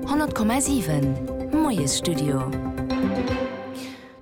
100,7 Moiesstudio.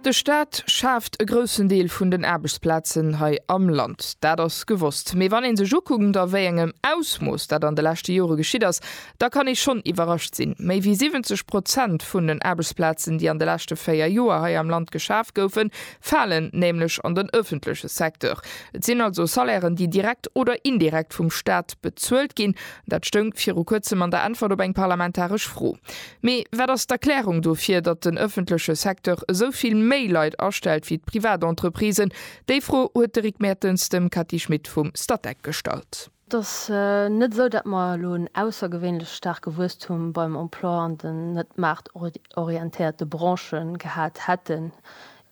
De Staat schaaft e groussen Deel vun den Aarbechtsplazen hei am Land. Dat ass gewosst. Mee wann ee sech ukuckt, a wéi engem Ausmooss dat an de leschte Jore geschitt ass, da kann ee schonn iwwerrascht sinn. Méi wéi 70 Prozent vun den Aarbechtsplazen, déi an de leschte véier Joer hei am Land geschaf goufen, falen nämlech an den ëffentleche Secteur. Et sinn also Salairen, déi direkt oder indirekt vum Staat bezuelt ginn. Dat stoung viru kuerzem an der Äntwert op eng parlamentaresch Fro. Mee wat ass d'Erklärung dofir, datt den ëffentleche Secteur esou vill méi Leit astellt wéi d'Privatentreprisen? Déi Fro huet de Rick Mertens dem Cathy Schmit vum Statec gestallt. Et ass net esou, datt mer elo en aussergewéinlech staarke Wuesstum beim Emploi an den net maartorientéierte Branche gehat hätten.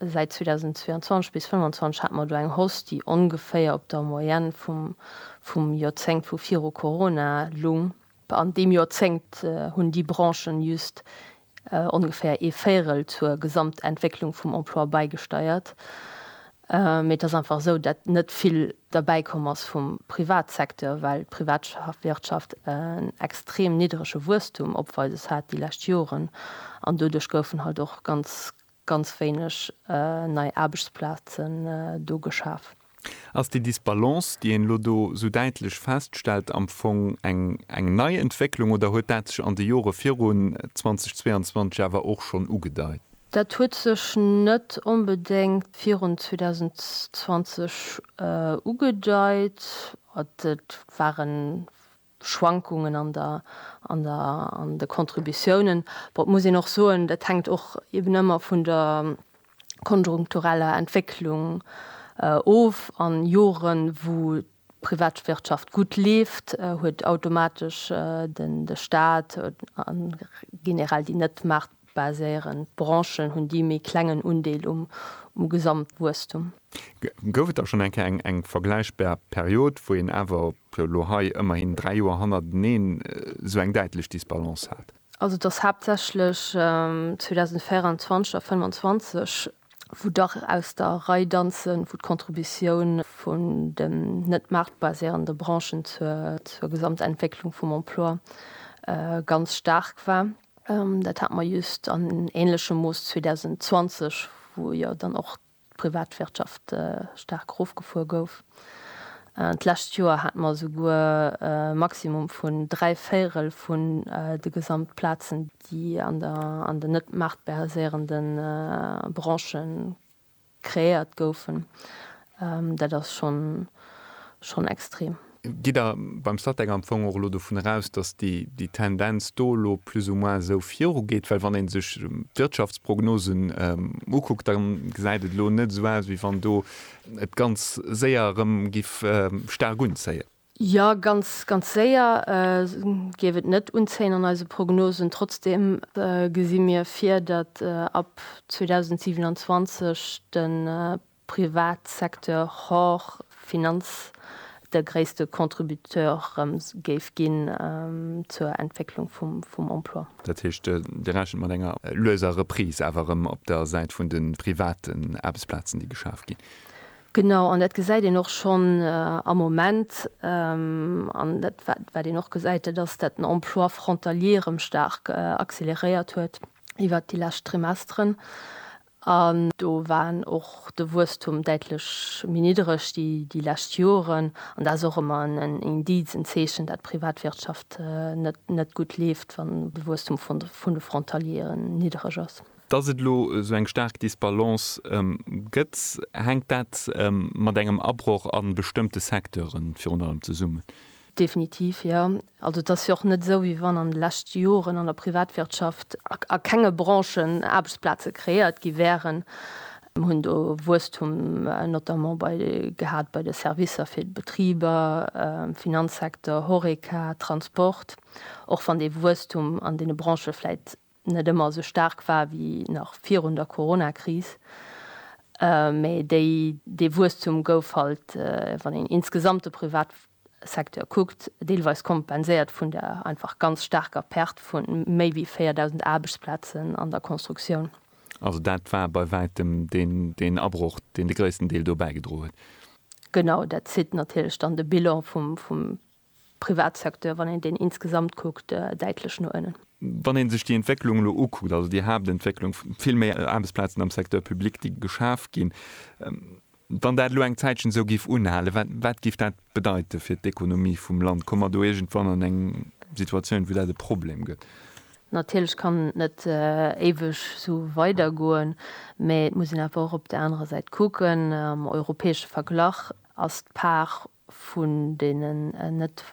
Säit 2022 bis 2025 hate mer do eng Hoss, déi ongeféier op der Moyenne vum Joerzéngt vu viru Corona lung. An deem Joerzéngt hunn déi Branchen just ongeféier ee Véirel zur Gesamtentwécklung vum Emploi bäigesteiert. Mee et ass einfach esou, datt net vill derbäi komm ass vum Privatsecteur, well d'Privatwirtschaft en extrem niddrege Wuesstum opweises hat déi lescht Joren. An doduerch goufen halt och ganz ganz wéineg nei Aarbechtsplazen do geschaf. Ass déi Disbalance, déi een elo do esou däitlech feststellt, am Fong eng nei Entwécklung oder huet dat sech an de Jore virun 2022 awer och schonn ugedeit? Dat huet sech net onbedéngt virun 2020 ugedeit. Et waren Schwankungen an der, an der, an de Contributiounen. Bon, et muss een och soen, dat hänkt och eben ëmmer vun der konjunktureller Entwécklung of. An Joren, wou d'Privatwirtschaft gutt leeft, huet automatesch de Stat, an generell déi net maart, baséieren. D'Branchen hunn déi méi klengen Undeel um Gesamtwuesstum. Gouf et da schonn eng Kéier eng vergläichbar Period, wou een awer, jo elo hei ëmmerhin dräi Joer hannerteneen, esou eng däitlech Disbalance hat? Also et ass haaptsächlech 2024 a 2025, wou dach aus der Rei danzen, wou d'Contributioun vun den net maartbaséierende Branchen zur Gesamtentwécklung vum Emploi ganz staark war. Dat hate mer just an änlechem Mooss 2020, wou jo dann och d'Privatwirtschaft staark erofgefuer gouf. D'lescht Joer hate mer esouguer e Maximum vun dräi Véirel vun de Gesamtplazen, déi an den net maartbariséierende Branchen Kreéiert goufen. Dat ass schonn extrem. Gitt Der beim Statec am Fong och elo dovun eraus, dass déi Tendenz do elo plus ou moins esou virugeet? Well wann ee sech d'Wirtschaftsprognosen ukuckt, da gesäit et elo net esou aus, wéi wann do et ganz séier erëm giff staark unzéien. Jo, ganz, ganz séier géif et net unzéien an eise Prognosen. Trotzdeem gesi mir vir, datt ab 2027 de Privatsecteur hors Finanz de gréisste Contributeur géif ginn zur Entwécklung vum Emploi. Dat heescht, Dir rechent mat enger lueser Reprise awer erëm op der Säit vun de private Aarbechtsplazen, déi geschaf ginn? Genau, an dat gesäit een och schonn am Moment, an dat wat een och gesäit, dat ass, dat den Emploi frontalier erëm staark acceleréiert huet iwwert déi lescht Trimesteren. An do war och de Wuesstum däitlech méi niddereg déi lescht Joren. An dat ass och ëmmer en Indiz, en Zeechen, dat d'Privatwirtschaft net gutt leeft, wann de Wuesstum vun de Frontalieren niddereg ass. Dass et elo esou eng staark Disbalance gëtt, hänkt dat mat engem Abroch a bestëmmte Secteure virun allem zesummen? Definitiv, jo. Also et ass jo och net esou, wéi wann an de leschte Joren an der Privatwirtschaft a kenge Branchen Aarbechtsplaze kreéiert gi wäeren. Mir hunn do Wuesstum notamment bei gehat bei de Servicer fir d'Betriber, Finanzsecteur, Horeca, Transport, och wann dee Wuesstum an deene Branchë vläicht net ëmmer esou staark war wéi nach virun der Coronakris, mä déi, dee Wuesstum gouf halt, wann een insgesamt de Privatsecteur kuckt, deelweis kompenséiert vun der einfach ganz staarker Perte vu méi wéi 4.000 Aarbechtsplazen an der Constructioun. Also dat war bei wäitem deen Abroch, deen de gréissten Deel dobäi gedro huet. Genau, dat zitt natierlech dann de Bilan vum Privatsecteur, wann een deen insgesamt kuckt, däitlech no ënnen. Wann ee sech déi Entwécklung elo ukuckt, also déi Haaptentwécklung, vill méi Aarbechtsplazen am Secteur public, déi geschaf ginn, wann dat elo eng Zäitchen esou géif unhalen, wat géif dat bedeite fir d'Ekonomie vum Land? Komme mer do iergendwann an eng Situatioun, wou dat e Problem gëtt? Natierlech kann et net éiweg esou weidergoen, mä et muss een awer och op där anerer Säit kucken, am europäesche Verglach ass d'Part vun deenen net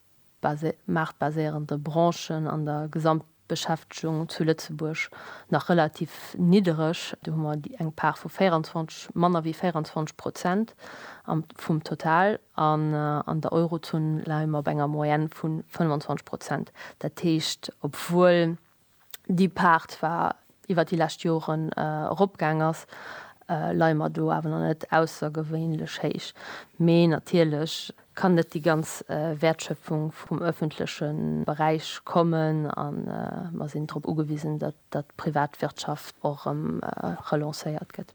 maartbaséierende Branchen an der Gesamtbeschäftegung zu Lëtzebuerg nach relativ niddereg. Do hu mer eng Part vu 24, manner wéi 24 Prozent vum Total. An an der Eurozon leie mer op enger Moyenne vu 25 Prozent. Dat heescht, obwuel déi Paart zwar iwwert déi lescht Joren eropgaang ass, leie mer do awer nach net aussergewéinlech héich. Mee natierlech kann net déi ganz Wäertschöpfung vum öffentleche Beräich kommen a mer sinn drop ugewisen, datt d'Privatwirtschaft och erëm relancéiert gëtt.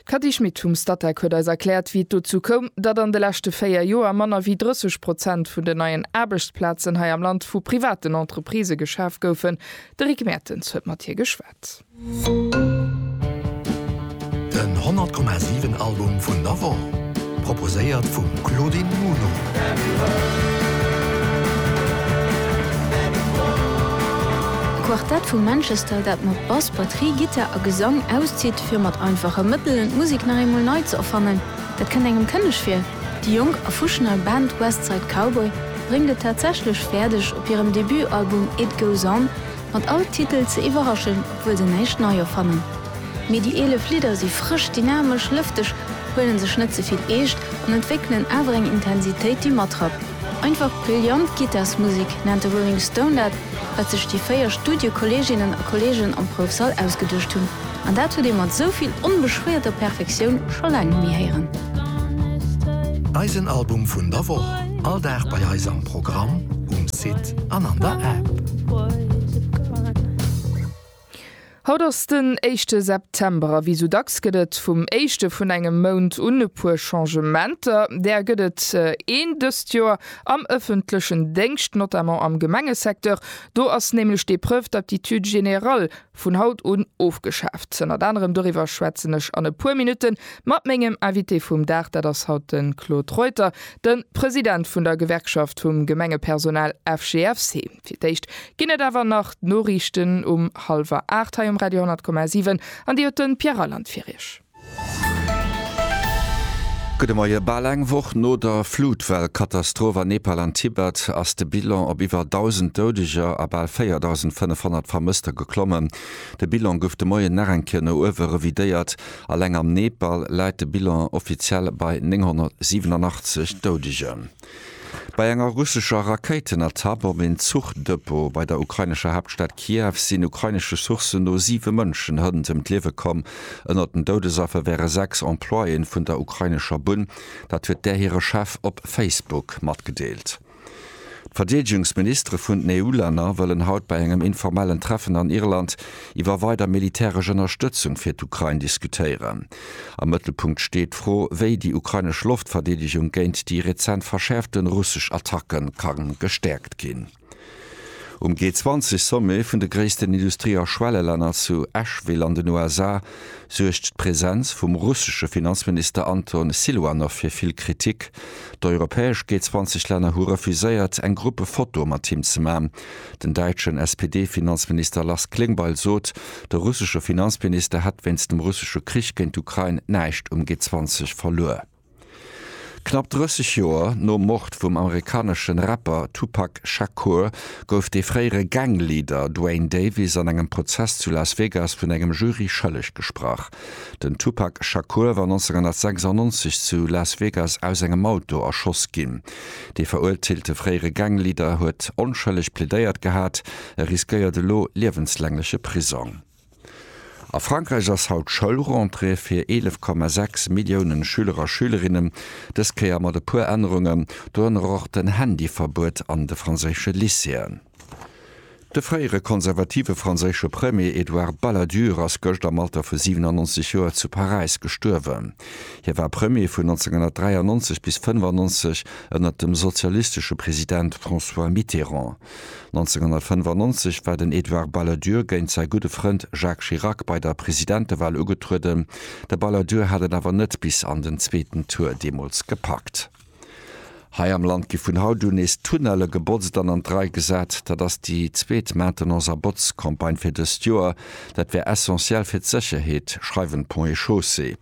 D'Cathy Schmit vum Statec huet eis erkläert, wéi et dozou koum, datt an de leschte véier Joer manner wéi 30 Prozent vun den neien Aarbechtsplazen hei am Land vu privaten Entreprisë geschaf goufen. De Rick Mertens huet mat hir geschwat. Den 100 Komma 7 Album vun der Woch, proposéiert vum Claudine Muno. D'Quartett vu Manchester, dat mat Bass, Batterie, Gittar a Gesang auszitt, Fir mat einfache Mëttelen d'Musik nach eemol nei ze erfannen, dat kënnt engem kënneg vir. Déi jonk a fuschnei Band West Side Cowboy bréngt et tatsächlech fäerdeg, op hirem Debutalbum It Goes On mat all Titel ze iwwerraschen, obwuel se näischt nei erfannen. Mee déi 11 Lidder si frësch, dynamesch, lëfteg, huelen sech net ze vill eescht an entwéckelen awer eng Intensitéit, déi matrappt. Einfach brillant Gittarsmusek nennt de Rolling Stone dat. wat sech déi véier Studiekolleeginnen a Kolleegen am Proufsall ausgeduecht hunn, an dat huet ee mat esou vill onbeschwéierter Perfektioun scho laang net méi héieren. Eisen Album vun der Woch, all Dag bei eis am Programm, um Site an an der App. Haut ass den éischte September a wéi sou dacks gëtt et vum éischte vun engem Mount un e puer Changementer. Där gëtt et een dëst Joer am ëffentlechen Déngscht, notamment am Gemengesecteur. Do ass nämlech d'Épreuve d'aptitude générale vun haut un ofgeschaaft. Ënnert anerem doriwwer schwätzen ech an e puer Minutte mat mengem Invité vum Dag, dat ass haut de Claude Reuter, de President vun der Gewerkschaft vum Gemengepersonal FGFC. Fir d'éischt ginn et awer nach d'Noriichten um hallwer aacht hei um Radio 10,7 an déi huet de Pierre Reyland fir Iech. Gudde Moie. Bal eng Woch no der Flutwell-Katastroph an Nepal an Tibet ass de Bilan op iwwer 1.000 Doudeger a bal 4.500 Vermësster geklommen. De Bilan gouf de Moien nach eng Kéier no uewe revidéiert. Alleng am Nepal läit de Bilan offiziell bei 987 Doudegen. Bei enger russescher Rakéitenattack op een Zuchdepot bei der ukrainescher Haaptstad Kiew sinn ukrainesche Sourcen no siwe Mënschen hënt ëm d'Liewe komm. Ënnert den Doudesaffer wäre sechs Employéen vun der ukrainescher Bunn. Dat huet där hire Chef op Facebook matgedeelt. D'Verdeedegungsministere vun den EU-Länner wëllen haut bei engem informellen Treffen an Irland iwwer weider militäresch Ënnerstëtzung fir d'Ukrain diskutéieren. Am Mëttelpunkt steet d'Fro, wéi déi ukrainesch Loftverdeedegung géint déi rezent verschäerfte russesch Attacke ka gestäerkt ginn. Um G20-Sommet vun de gréissten Industrie a Schwellelänner zu Asheville an den USA suergt d'Presenz vum russesche Finanzminister Anton Siluanow fir vill Kritik. D'europäesch G20-Länner hu refuséiert, eng Gruppefoto mat him ze maachen, Den däitschen SPD-Finanzminister Lars Klingbeil sot, de russesche Finanzminister hätt wéinst dem russesche Krich géint d'Ukrain näischt um G20 verluer. Knapp 30 Joer nom Mord vum amerikaneschen Rapper Tupac Shakur gouf de fréiere Gang-Leader Duane Davis an engem Prozess zu Las Vegas vun engem Jury schëlleg gesprach. Den Tupac Shakur war 1996 zu Las Vegas aus engem Auto erschoss ginn. Dee verurteelte fréiere Gangleader huet onschëlleg plädéiert gehat, e riskéiert elo liewenslängleche Prisong. A Frankräich ass haut Schoulrentrée fir 11,6 Milliounen Schüler a Schülerinnen, dës Kéier mat e puer Ännerungen, dorënner och den Handyverbuet an de franséische Lycéeën. De fréiere konservative franséische Premier Edouard Balladur ass gëscht am Alter vu 97 Joer zu Paräis gestuerwen. Hie war Premier vun 1993 bis 1995 ënner dem sozialistesche President François Mitterrand. 1995 war den Edouard Balladur géint säi gudde Frënd Jacques Chirac bei der Presidentewal ugetrueden. De Balladur hat et awer net bis an den zweeten Tour deemools gepackt. Hei am Land gi vun haut un nees Tunnelle gebotzt an an d'Rei gesat. Dat ass déi zweet Maintenance a Botzcampagne fir dëst Joer. Dat wär essentiell fir d'Sécherheet, schreiwen d'Ponts et Chaussées.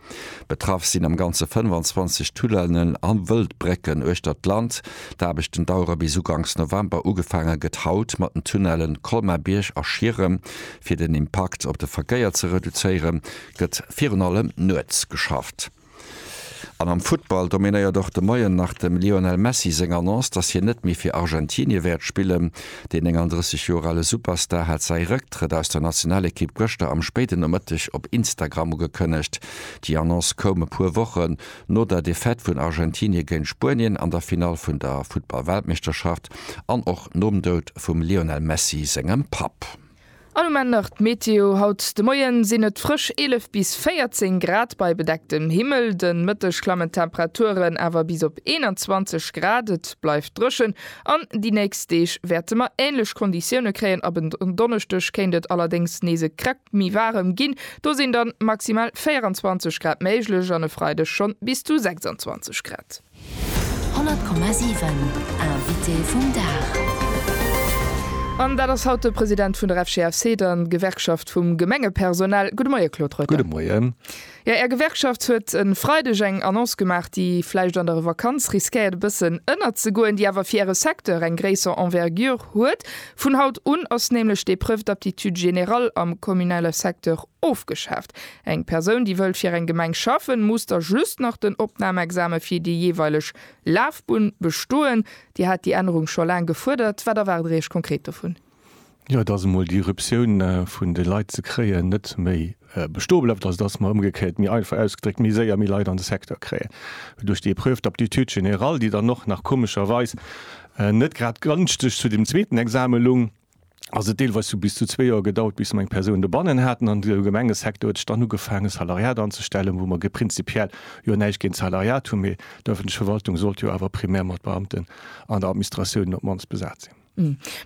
Betraff sinn am Ganze 25 Tunnellen a Wëldbrécken uechter d'Land. D'Aarbechten dauere bis uganks November. Ugefaange gëtt haut mat den Tunnelle Colmar-Bierg a Schierem. Fir den Impakt op de Verkéier ze reduzéiere gëtt virun allem nuets geschafft. An am Futtball dominéiert och de Moien nach dem Lionel Messi seng Annonce, dass hien net méi fir Argentinie wäert spillen. Deen 39 Joer ale Superstar hat säi Rëcktrëtt aus der Nationalekipp gëschter am spéiden Nomëtteg op Instagram ugekënnegt. Déi Annonce koum e puer Wochen no der Defaite vun Argentinie géint Spuenien an der Finall vun der Futtball-Weltmeeschterschaft an och nom Doud vum Lionel Messi sengem Papp. An um Enn nach d'Meteo, Haut de Moien sinn et frësch 11 bis 14 Grad bei bedecktem Himmel, de Mëtteg klammen d'Temperaturen awer bis op 21 Grad. Et bleift dréchen an déi nächst Deeg wäerte mer änlech Konditioune kréien. Ab en Donneschdeg kéint et allerdéngs nees e Krack méi waarem ginn, do sinn dann maximal 24 Grad méiglech an e Freideg schonn bis zu 26 Grad. 100,7 Invité vum Dag. An dat ass haut de President vun der FGFC, der Gewerkschaft vum Gemengepersonal. Gudde Moie, Claude Reuter. Gudde Moien. Jo, Är Gewerkschaft huet e Freideg eng Annonce gemaach, déi vläicht an der Vakanz riskéiert e bëssen ënnerzegoen, déi awer fir Äre Secteur eng gréisser Envergure huet. Vun haut un ass nämlech d'Épreuve d'aptitude générale am kommunale Secteur ofgeschaaft. Eng Persoun, déi wëllt fir eng Gemeng schaffen, muss da just nach den Opnamexame fir déi jeeweileg Lafbunn bestoen. Dir hat déi Ännerung scho laang gefuerdert. Wat erwaart Der Iech konkret dovun? Jo, dass emol déi Ruptioun vun de Leit ze kréien net méi bestoe bleift, also dass mer, ëmgekéiert, méi einfach ausgedréckt, méi séier méi Leit an de Secteur kréien duerch déi Épreuve d'aptitude générale, déi dann och nach komescherweis net grad gënschteg zu deem zweeten Exame lung. ass et deelweis zu bis zu zwee Joer gedauert, bis mer eng Persoun dobannen haten. An de Gemengesecteur huet dann ugefaangen, Salariat anzustellen, wou mer prinzipiell jo näischt géint d'Salariat hunn, mee d'ëffentlech Verwaltung sollt jo awer primär mat Beamten an der Administratiounen op d'mannst besat sinn.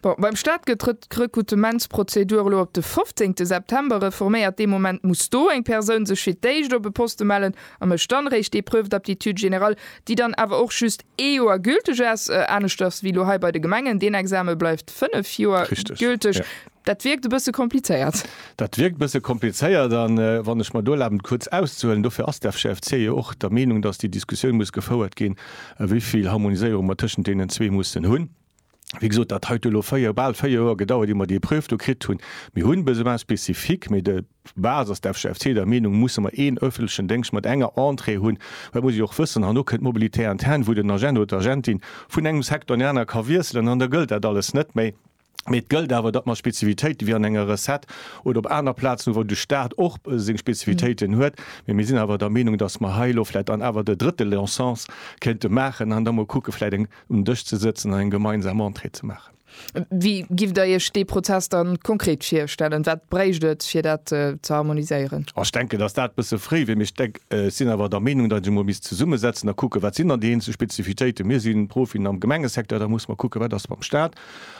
Bon, beim Staat gëtt d'Rekrutementsprozedur elo op de 15 September reforméiert. Dee Moment muss do eng Persoun sech fir d'éischt op e Poste mellen a mécht dann eréischt d'Épreuve d'aptitude générale, déi dann awer och just ee Joer gülteg ass, aneschters wéi elo hei bei de Gemengen. Deen Exame bleift fënnef Joer gülteg. Dat wierkt e bësse komplizéiert. Dat wierkt e bësse komplizéiert. A wann ech mer do erlaben, kuerz auszehuelen, dofir ass d'FCFC jo och der Meenung, datt déi Diskussioun muss gefouert ginn, wéi vill Harmoniséierung mer tëschent deenen zwee mussen hunn. Wéi gesot, dat hei huet elo véier, bal véier Joer gedauert, ier mer dee Prüf do kritt hunn. Mir hu Besoins spécifiques, mee de base ass de FGFC der Meenung, musse mer een öffentlechen Déngscht mat enger Entrée hunn, well et muss ee jo och wëssen, herno kënnt d'Mobilité interne, wou den Agent oder d'Agentin vun engem Secteur an deen anere ka wiesselen an da gëllt dat alles net méi. Mee et gëllt awer, datt mer Spezifitéiten, wéi an enger Recette oder op aner Plazen hu, wou de Stat och seng Spezifitéiten huet, mee mir sinn awer der Meenung, datt mer hei elo vläicht dann awer de drëtte Leonsens kéinte maachen an da mol kucke vläicht eng um Dësch ze sëtzen an eng gemeinsam Entrée ze maachen. Wéi giff Der Iech dee Prozess dann konkret virstellen? Wat bréicht et, fir dat ze harmoniséieren? Ech denken, datt dat e bësse fréi wier, mee ech denk, ech sinn awer der Meenung, datt ee sech emol misst zesummesetzen a kucken, wat sinn dann déi eenzel Spezifitéiten. Mir si Profien am Gemengesecteur, da musse mer kucken, wat ass mam Stat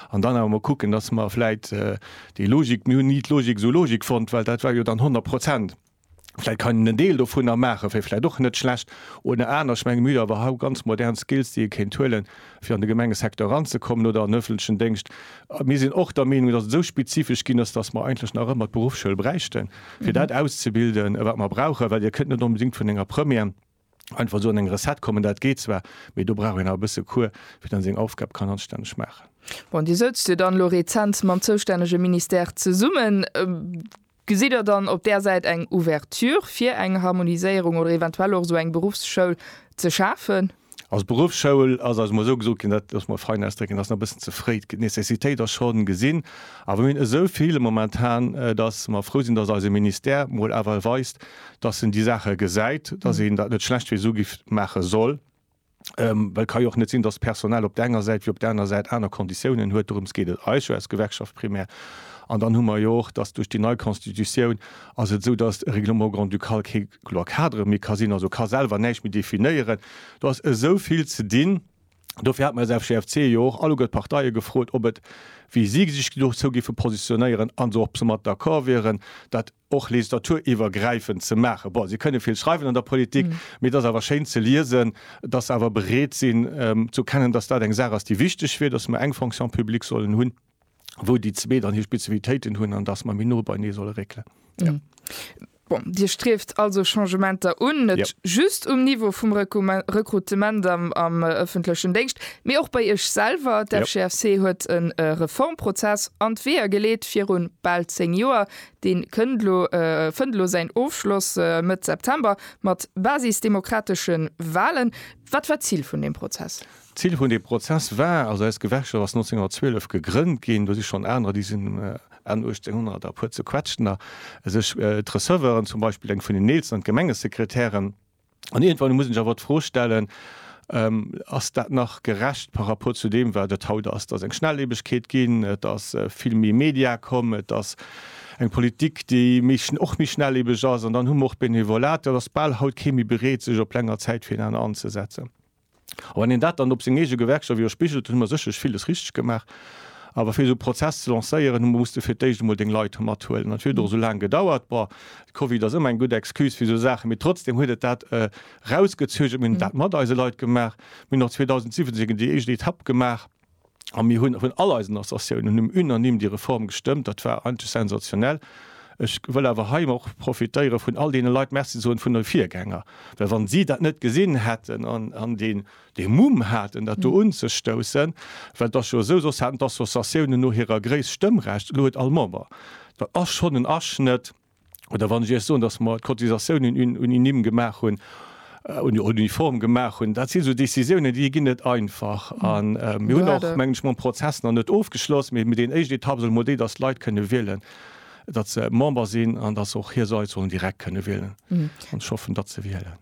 an dann awer emol kucken, datt mer vläicht déi Logik, mir hunn ni d'Logik esou logique fonnt, well dat war jo dann 100 Prozent Vläit kann een en Deel dovunner maachen, wär vläit och net schlecht. Oder aner, ech mengen mir hunn awer hau ganz modern Skills déi ee kéint huelen, fir an de Gemengesecteur eranzekommen oder an den ëffentlechen Déngscht. Mir sinn och der Meenung, datt et esou spezifesch ginn ass, datt mer eigentlech nach ëmmer d'Beruffsschoul bräichten, fir dat auszebilden wat mer brauchen, well Dir kënnt net onbedéngt vun enger Première, einfach esou an eng Recette kommen, dat geet zwar, mee do brauch een awer e bësse Cours, fir dann seng Aufgab kann anstänneg maachen. Bon, Dir soutzt jo dann elo rezent mam zoustännege Ministère zesummen. Gesitt Der dann op där Säit eng Ouverture fir eng Harmoniséierung oder eventuell och esou eng Beruffsschoul ze schafen? Also d'Beruffsschoul ass eis emol esou gesot ginn, dat loosse mer fein ausdrécken, ass nach e bëssen ze fréi. D'Necessitéit ass scho gesinn, awer mir hunn esou vill momentan, datt mer frou sinn, datt eise Ministère mol awer weist, dass en déi Saache gesäit, dass een dat net schlechtweis ugi maache soll, well et ka jo och net sinn, dass d'Personal op der enger Säit wéi op der aner Säit aner Konditiounen huet. Dorëms geet et eis jo als Gewerkschaft primär. An dann hu mer jo och, dass duerch déi nei Constitutioun ass et esou, dass e Règlement grand-ducal kee loi cadre méi ka sinn, also ka selwer näischt méi definéieren. Do ass esou vill ze dinn. Dofir hat mer als FGFC jo och alleguer d'Parteie gefrot, ob et, wéi si sech dozou géife positionéieren an se och soumat d'accord wieren, dat, och legislaturuewergräifend ze maachen. Bon, si kënne vill schreiwen an der Politik, mee et ass awer schéin ze liesen, dass se awer bereet sinn zu erkennen, dass dat eng Saach ass, déi wichteg wier, dass mer eng Fonction publique sollen hunn, wou déi zwee dann hir Spezifitéiten hunn an dass mer méi no beinee solle réckelen. Jo. Bon, Dir strieft also Changementer un, net just um Niveau vum Rekrutement am ëffentlechen Déngscht, mee och bei Iech selwer. D'FGFC huet e Reformprozess an d'Weeër geleet virun bal zéng Joer. Deen kënnt lo, fënnt lo säin Ofschloss Mëtt September mat basisdemokrateschen Wahlen. Wat war d'Zil vun deem Prozess? D'Zil vun deem Prozess war, also eis Gewerkschaft ass 1912 gegrënnt ginn, do si schonn anerer, déi sinn Enn 1800 a puer zequetschtener, sech d'Receveuren zum Beispill, eng vun den eelsten an d'Gemengesekretären, An iergendwann muss een sech awer d'Fro stellen, Ass dat nach gerecht par rapport zu deem, wat et haut ass? Et ass eng Schnelllebegkeet ginn, et ass vill méi Media komm, et ass eng Politik, déi och méi schnelllebeg ass. An dann hu mer och d'Benevolat. Et ass bal haut kee méi bereet, sech op länger Zäit fir en aner anzesetzen. A wann een dat dann op seng eege Gewerkschaft iwwerspigelt, dann hu mer sécherlech villes richteg gemaach. Awer fir esou e Prozess ze lancéieren, musst de fir d'éischt emol deng Leit do mathuelen. An et huet och esou laang gedauert. Bon, de Covid ass ëmmer eng gutt Excuse fir esou Saachen, mee trotzdeem huet et dat erausgezögert. Mir hunn dat mat eise Leit gemaach. Mir hunn och 2017 déi éischt Etapp gemaach. A mir hunn vun all eisen Associatiounen um unanime déi Reform gestëmmt. Dat war eigentlech sensationell. Ech wëll awer hei och profitéiere vun all deene Leit Merci soen, vun de Virgänger, well wann si dat net gesinn hätten an deen dee Mumm haten, dat do unzestoussen, well et ass jo esou, soss haten d'Associatiounen no hirer Gréisst Stëmmrecht, elo huet all Member, dat ass schonn en Aschnëtt. oder wann ech Iech soen, dass mer d'Cotisatiounen unanime gemaach hunn, uniform gemaach hunn, dat si sou Décisiounen, déi ginn net einfach. An mir hunn och, mengen ech, mam Prozess nach net ofgeschloss, mee déi éischt Etapp ass emol déi, dass d'Leit kënne wielen, datt se Member sinn an datt se och hir Leit sollen direkt kënne wielen. An ech hoffen, datt se wielen.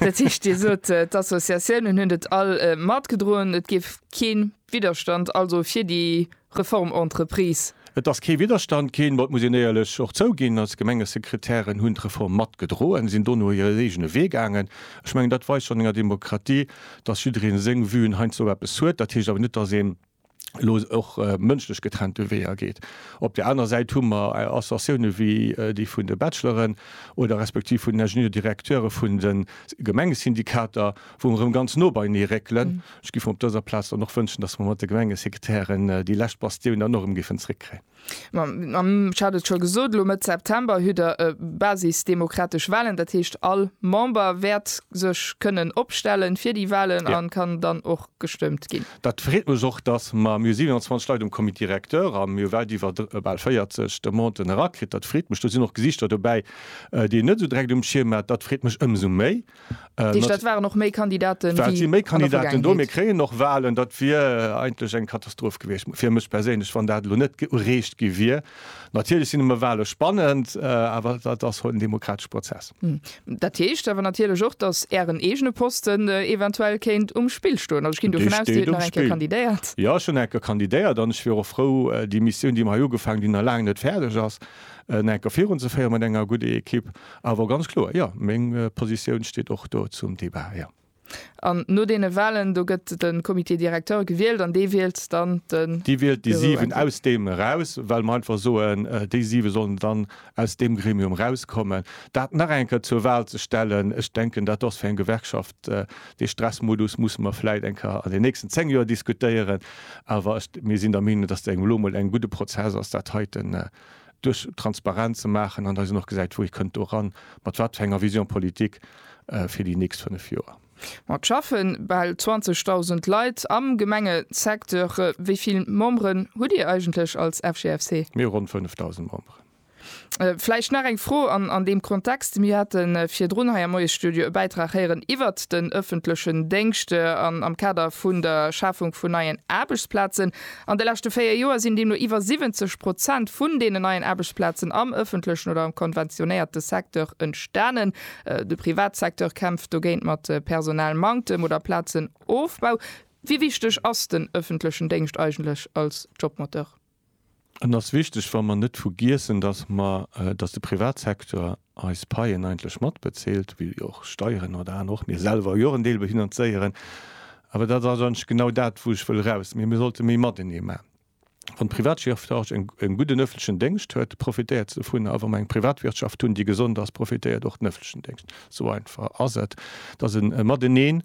Dat heescht, Dir sot, d'Associatiounen hunn dat all matgedroen, et géif kee Widderstand also fir déi Reformentreprise? Et ass kee Widderstand ginn, ma et muss een éierlech och zouginn, als Gemengesekretären hunn d'Reform mat gedroen, sinn dono hiren eegene Wee gaangen. Ech mengen, dat weist schonn enger Demokratie, dass jiddereen seng Vuen heiansdo eppes huet. Dat heescht awer net, dass een elo och mënschlech getrennte Weeër geet. Op där aner Säit hu mer Associatiounen wéi déi vun de Bachelor'en oder respektiv vun den Ingenieur-directeur'e vun de Gemengesyndikater, wou mer erëm ganz no beienee réckelen. Ech géif mer op dëser Plaz dann och wënschen, dass mer mat de Gemengesekretären déi lescht Bastioun dann och erëm géifen zeréckkréien. Ech hat et scho gesot, elo Mëtt September hutt Der basisdemokratesch Walen. Dat heescht, all Member wäert sech kënnen opstellen fir déi Walen a kann dann och gestëmmt ginn. Dat freet mech och, dass mer, mir hu 27 Leit um Comité directeur a mir hu wäit iwwer, bal 40 Demanten erakritt. Dat freet mech. Do sinn och Gesichter dobäi, déi een net esou direkt um Schierm hat. Dat freet mech ëmsou méi. Dat heescht, et waren och méi Kandidaten wéi an der Vergaangenheet? Et si méi Kandidaten do. Mir kréien och Walen. Dat wier eigentlech eng Katastroph gewiescht fir mech perséinlech, wann dat elo net ereecht gi wier. Natierlech sinn ëmmer Wale spannend, awer dat ass en demokratesche Prozess. Dat heescht awer natierlech och, datt Ären eegene Posten eventuell kéint um Spill stoen. Also ech ginn dovun aus, Dir hutt nach eng Kéier kandidéiert. Dee steet um Spill. Jo, ech hunn eng Kéier kandidéiert an ech wier och frou, déi Missioun, déi mer hei ugefaangen hunn, déi nach laang net fäerdeg ass, en enker virunzeféieren mat enger gudde Ekipp. Awer ganz kloer, jo, meng Positioun steet och do zum Débat, jo. An no deene Wahlen, do gëtt de Comité directeur gewielt an dee wielt dann de. Dee wielt déi siwen aus deem eraus, well mer einfach soen, déi siwe sollen dann aus deem Gremium erauskommen. Dat nach eng Kéier zur Wahl ze stellen, ech denken, dat ass fir eng Gewerkschaft. Dee Stressmodus musse mer vläit eng Kéier an den nächsten zéng Joer diskutéieren, awer ech, mir sinn der Meenung, dass dat elo emol en gudde Prozess ass, dat heiten duerch transparent ze maachen an dass een och gesäit, wou ee kënnt do eran, mat wat fir enger Vision politique fir déi nächst fënnef Joer. Mä et schaffen bal 20.000 Leit am Gemengesecteur. Wéi vill Memberen hutt Dir eigentlech als FGFC? Mir hu ronn 5.000 Memberen. Vläicht nach eng Fro an deem Kontext, Mir hate virdrun hei am Moiesstudio e Bäitrag héieren iwwert den ëffentlechen Déngscht an am Kader vun der Schafung vun neien Aarbechtsplazen. An de leschte véier Joer sinn deemno iwwer 70 Prozent vun deenen neien Aarbechtsplazen am ëffentlechen oder am konventionéierte Secteur entstanen. De Privatsecteur kämpft dogéint mat Personalmanktem oder Plazenofbau. Wéi wichteg ass den ëffentlechen Déngscht eigentlech als Jobmoteur? Et ass wichteg, wa mer net vergiessen, dass mer, dass de Privatsecteur eis Paien eigentlech matbezilt, wéi jo och Steieren oder aner, och mir selwer jo och en Deel behinanzéieren. Awer dat ass eigentlech genau dat, wou ech wëll eraus, mee mir sollte méi matenee maachen. Wann d'Privatwirtschaft e gudden öffentlechen Déngscht huet, profitéiert se dovunner. A wa mer eng Privatwirtschaft hunn, déi gesond ass, profitéiert och den öffentlechen Déngscht. Esou einfach ass et. Et ass e Mateneen.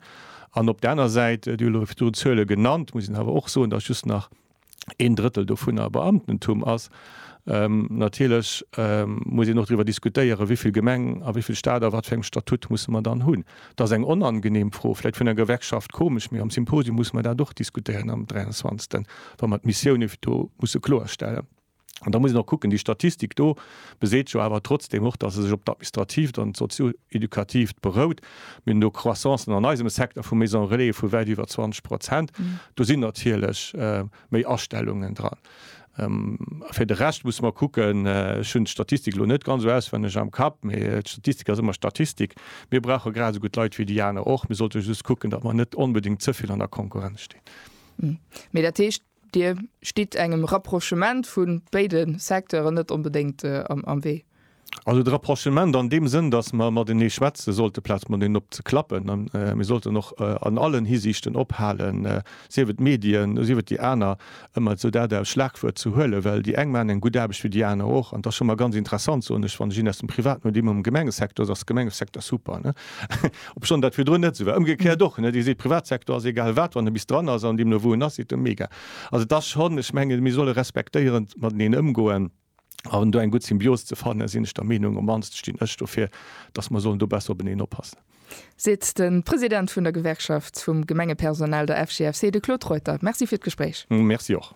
An op der aner Säit, Dir hutt elo virdrun Zuele genannt, muss een awer och soen, dass just nach een Drëttel dovunner Beamtentum ass. Natierlech muss een och driwwer diskutéieren, wéi vill Gemeng a wéi vill Stat a wat fir engem Statut musse mer dann hunn. Et ass eng onangenehm Fro, vläicht vun der Gewerkschaft komesch, mee am Symposium musse mer dat och diskutéieren am 23, wa mer d'Missioune do musse kloerstellen. An da muss een och kucken, déi Statistik do beseet jo awer trotzdeem och, datt se sech op d'Administratiivt an d'Sozio-Educatiivt berout. Mir hunn do Croissancen an eisem Secteur vu Maisons relais vu wäit iwwer 20 Prozent. Do sinn natierlech méi Astellungen dran. Fir de Rescht muss mer kucken, ech hunn d'Statistik elo net ganz esou auswenneg am Kapp, mee d'Statistik ass ëmmer Statistik. Mir brauche grad esou gutt Leit wéi déi aner och. Mir sollte just kucken, datt mer net onbedéngt ze vill an der Konkurrenz stinn. Mee dat heescht, Dir stitt engem Rapprochement vu béide Secteuren net onbedéngt am Wee? Also de Rapprochement an deem Sënn, datt mer matenee schwätze sollte amplaz mateneen op ze klappen. A mir sollten och an allen Hisiichten ophalen, sief et d'Medien, sief et déi aner, ëmmer esou dat als Schlagwuert ze huelen, well déi eng maachen eng gutt Aarbecht wéi déi aner och. An et ass scho mol ganz interessant, soen ech, wann ech een aus dem Privaten hunn, dee mol am Gemengesecteur ass, ass de Gemengesecteur super. Obschonn dat virdrun net esou war. Ëmgekéiert och, ne? Dir seet, Privatsektor ass egal wat, wann e bis dran ass an deemno wou en ass, seet e mega. Also et ass schonn, ech mengen, mir solle respektéierend mateneen ëmgoen an do eng gutt Symbios ze fannen, sinn ech der Meenung. Op d'mannst stinn ech dofir, dass mer sollen do besser openeen oppassen. Seet de President vun der Gewerkschaft vum Gemengepersonal, der FGFC, de Claude Reuter. Merci fir d'Gespréich. Merci och.